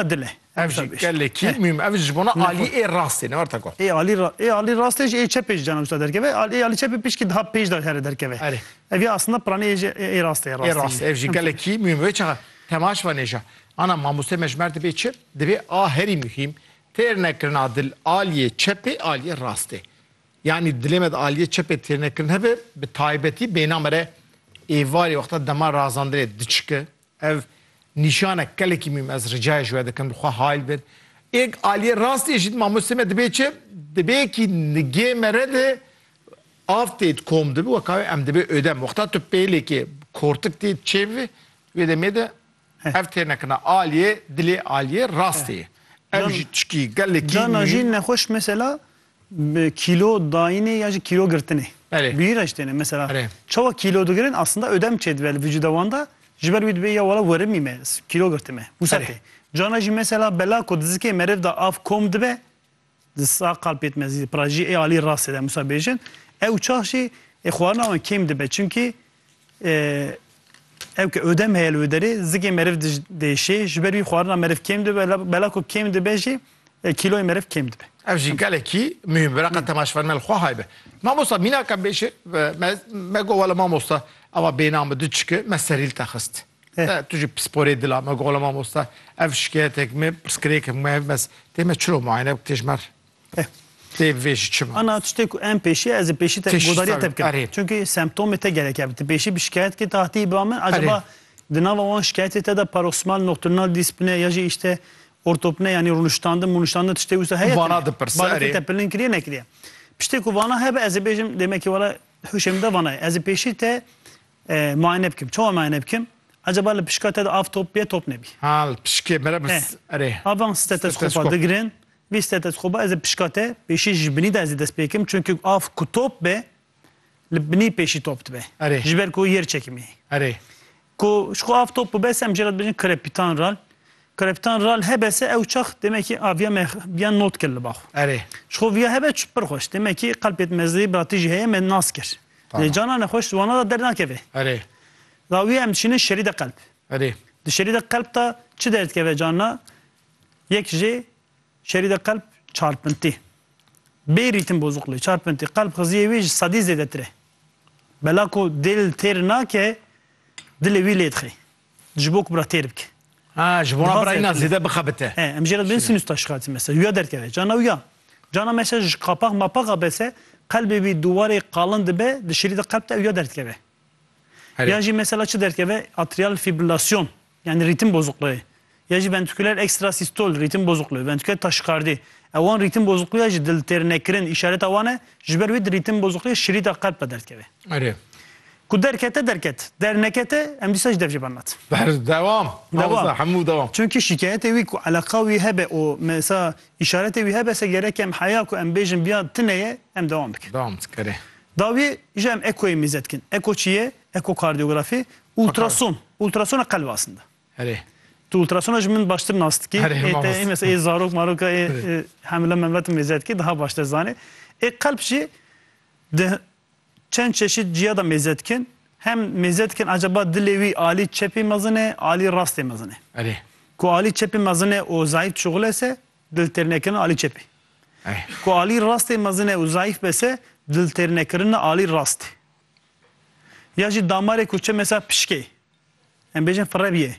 dil e. Ev jî gelekî mûhîm. Ev ji bona alî ê rastê ne war teko. Ê alî ê alî rastê jî ê çepê jî cana wisa derkeve. Ê alî çepê pişkî daha pêj de here derkeve. Erê. Ev ya aslında piranî ê jî ê rastê rastê. Ê rastê ev jî gelekî mûhîm. Wê çaxa temaş ve nêja. Ana mamoste me ji mer dibê çi? Dibê a herî mûhîm têr nekirina dil aliyê çepê aliyê rastê. Yani dilê me de aliyê çepê têr nekirin hebe bi taybetî bêna me re êvarê wexta dema razandinê diçike Ev nîşanek gelekî mîm ez ricayê ji we dikim li xwe hayl bir. Êg aliyê rastiyê jî mamostê me dibê çi? Dibê kî nigê me re de av tê di kom de bi weka wê em dibê ödem. Wexta tu pêlêkê kortik tê çêv bi wê demê de ev tê nekirina aliyê dilê aliyê rastiyê. Ev jî tişkî gelekî mîm. Cana jî nexweş mesela Bi kîlo dayînê ya jî kîlo girtinê. Belê. Bihîr re jî têne. Mesela Belê. çawa kîlo digirin aslında ödem çêdibe li vücuda wan de ji ber wî dibê ya wala werimî me ez kîlo girtime. Wisa Belê. tê. Cana jî mesela bela ku dizikê meriv de av kom dibe di sa qalpêt mezî pirajî ê alî rastê de wisa bêjin ew çax jî ê xwarina wan kêm dibe. Çimkî Ew ke odem heye li wê derê zikê meriv dij diêşê, ji ber wî xwarina meriv kêm dibe, bela ku kêm dibe jî kîloyê meriv kêm dibe. Ev jî gelekî muhîm bi reqa temaşvan me li xwe hay be. Mamosta mîna ke bêşê me got wele mamosta ava bêhna min du çiki me serî li te xist. Tu jî pisporê dil a me got wele mamosta ev şikeyetek min pirsgirêk min heye tê me çiro muayene bik tê ji me re. Eh, tê vê jî çima? Ana tiştê ku em pêşî ez ê pêşî te Pêşî godariya te tabii, bikim. erê. Çünkü semptomê te gerek e. Ti pêşî bi şikayet kê tahtiyê ba min acaba Erê. di nava wan şikayetê te de paroksimal nocturnal dîspine ya jî îşte ortopne yanî rûniştandin mûniştandin tiştê wisa heye Vana tune? dipirse, Baletê erê. te pilin kiriye nekiriye. Piştê ku vana hebe ez ê bêjim demekî wala huşê min de vana ye. Ez ê pêşî te eh, muayene bikim. Çawa muayene bikim? Acaba li pişka te de av top bîye top nebî. Ha, li pişkê mere Eh. bis. Erê. Avan stetoskopa Steteskop. digirin, Bîste te dixwe ba ez ê pişka te pêşî ji binî de ez ê dest pê kim çunki av ku top be li binî pêşî top dibe ji ber ku yer çekimê heye. Ku ji ku av top bibe se em jê re dibêjin krepîtan ral. Krepîtan ral hebe se ew çax demekî aviya me biya not kir li ba xwe. Ji ku viya hebe pir xweş demekî qelpê di me zêdî biratî jî heye me nas kir. Lê cana nexweş di wana de dernakeve. Dawiyê em diçînin şerî de qelp. Di şerî de qelp de çi derdikeve cana Yek jê şerî de qelb çarpintî. Bê rîtim bozuklê, çarpintî, qelb xiziyê wî ji sedî zêdetir e. Bela ku dêl têr nake, dilê wî lê dixê. Ji bo ku bira têr bike. Ha, ji bo na bira îna zêde bixebite. He, em jê re dibin sinus taşigatî mesela. Wî ya derkeve. Carna wî ya. Carna mesela ji qapax mapax a bese, qelbê wî dûwarê qalin dibe, di şerî de qelb de ew ya derdikeve. Ya jî mesela çi derkeve? Atrial fibrilasyon. Yani rîtim bozuqluği. Ya jî ventriküler ekstrasistol, rîtim bozuqluği, ventriküler taşikardî. Ew wan rîtim bozuqluği ya jî dil têr nekirin îşareta wan e, ji ber wî di rîtim bozuqluğê şirîta qelb ve derdikeve. Erê. Ku derkete derket, dernekete em dîsa jî dev jê bernat. Ber dewam. Dewam. Mamosta hemû dewam. Çimkî şîkayetê wî ku eleqa wî hebe û mesa îşaretê wî hebe se gerek em heya ku em bêjin biya tune ye em dewam bikin. Dewam bikin. Erê. Dawiyê ji em ekoyê mîze dikin. Eko çi ye? Ekokardiyografî, ultrason, ultrasona qelb aslinde. Erê. Tu ultrasona ji min baştir nas dikî. Erê, Ê te mamosta. ê mes ê zarok maroka ê ê hemle memle tu mêze dikî daha baştir zanê. Ê qelb jî di çend çeşîd ciya de mêze dikin. Hem mêze dikin ecaba dilê wî alî çepê mezin e, alî rastê mezin e. Erê. Ku alî çepê mezin e û zayîf dişuxile ise dil têr nekirin alî çepê. Erê. Ku alî rastê mezin e û zayîf bise dil têr nekirin alî rastê. Ya jî damarê ku çi mêsa pişkê, em bêjin firebiyê,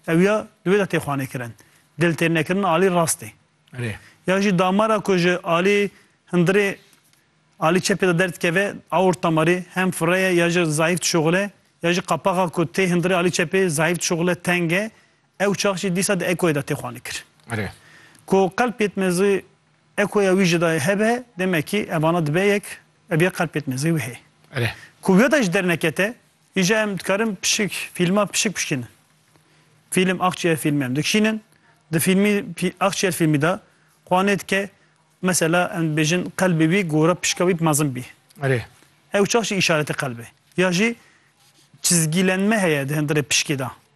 ew ya di wê de tê xwanêkirin. Dil tê nekirin alî rastê. Erê. Ya jî damara ku ji alî hindirê alî çepê de derdikeve, aorta marî hem fire ye ya jî zayîf dişuxile, ya jî qapaxa ku tê hindirê alî çepê zayîf dişuxile, teng e, Ew çax jî dîsa di Ekoyê de tê xwanikirin. Ku Qelb Pêtmezî Ekoya wî jî dayê hebe, demekî evana dibe yek, ev yê Qelb Pêtmezî wî heye. Ku wê de jî dernekete, îja em dikarin pişik fîlma pişik bişkînin. Fîlm Axçiyer fîlmê em dikişînin, di fîlmî Axçiyer fîlmî de xwanê dike, mesela em dibêjin qelbê wî gora pişka wî mezin bî. Ew çax jî îşaretê qelbê. Ya jî çizgîlenme heye di hundirê pişkê de.